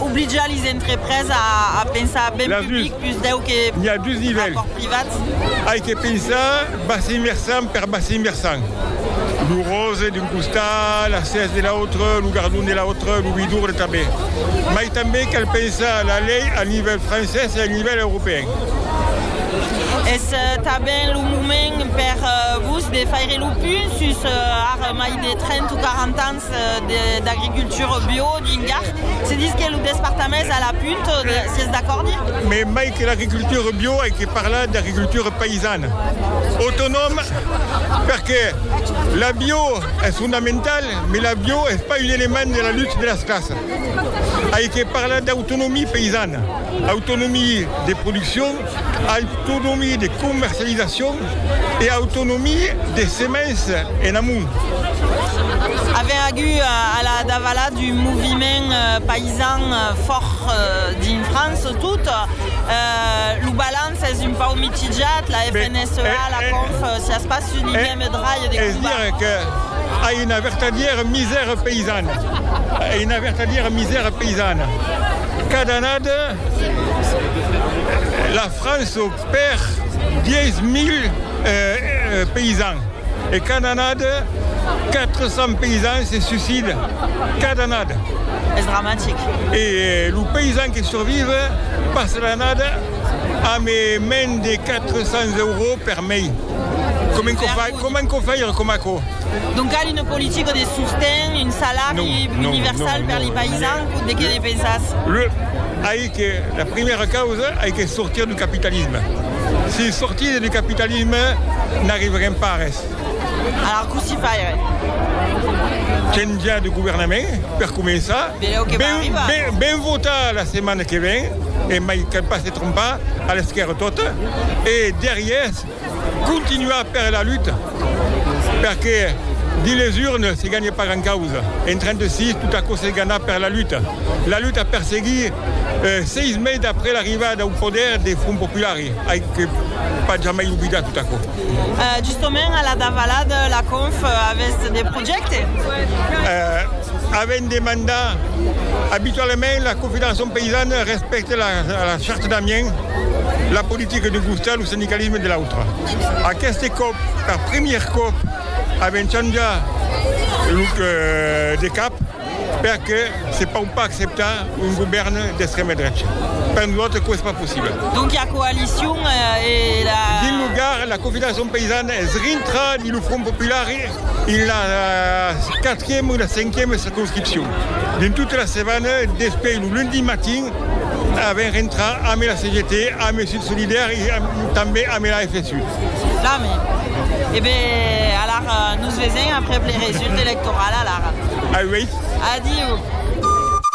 Oblijar les entrepreses a pensar ben public pus deu que acòrds privats. Ai que pensar bassin versant per bassin versant, lo rose d'un costat, la sètz de l'autre, lo gardon de l'autre, lo vidur de tanben. Mai tanben cal pensar la lei a nivèl francés e a nivèl europèen. Es tanben lo moment per vos de faire lo punt sus ara mai de 30 o 40 ans. d'agricultura bio dins Gard. Se ditz que lo despartament es a la punt, sies d'acòrdi? Mai mai que l'agricultura bio ai que parlar d'agricultura païsana, autonòma, perque la bio es fondamentala, mai la bio es pas un element de la lutte de las classas. Ai que parlar d'autonomia païsana, autonomia de produccion, Autonomie de comercializacion e autonomie de semens en amont. Avèm agut a la davala d'un moviment paisan fòrt dins França tot. Lo balanç es un pauc mitjat, la FNSEA, la Conf, siás pas un idiome drai de combatre. Es dire qu'a una vertadièra misèra paisana. Una vertadièra misèra paisana. Cada annada. La França perd 10.000 paysans e cada annada 400 paysans se suiciden, cada annada. Es dramatic. E lo paysan que survive passa l'annada amb mens de 400 euros per mei. Comment co faire com aquò? Donc cal una politica de sosten, un salari universal per li païsans, de qué ne pensas? Ai que, la primièra causa, ai que sortir du capitalisme. Si sortide du capitalisme, n'arriverem pas a res. Alara cossí faire? Chanjar de governament, per començar. Velèu que va arribar. Ben votar la setmana que ven, e mai cal pas se trompar, a l'esquèrra tota, e derrièrs. Continuar per la luta, perque dins les urnes se ganhe pas gran causa, en 36 tot aquò s'es ganhat per la luta, la luta per seguir 6 meis d'après l'arribada au poder de Front Populari, ai que pas jamai oblidar tot aquò. Justement, a la davalada, la Conf. Avètz de projècte? Avèm demandat abitualament la Confederacion Paysana respècte a la Charta d'Amiens, la politica de gustar los. Sindicalisme de l'autra. Aqueste còp, per primièr còp, avèm chanjat lo de cap perque se pòu pas acceptar un govèrn d'extrèma drecha. Per nosautres aquò es pas possible. Donc i a coalicion e la. Dins lo Gard, la Confederacion Paysana es rintrada dins lo Front Popular. En la quatrième o la cinquième circonscription, dins tota la setmana, despès lo lundi matin, avèm rentrat amb la CGT, amb lo Sud Solidar e tanben amb la FSUD. Flame. E ben, alar nos vesèm aprèp le result electoral, alara. A uèi. Adiu.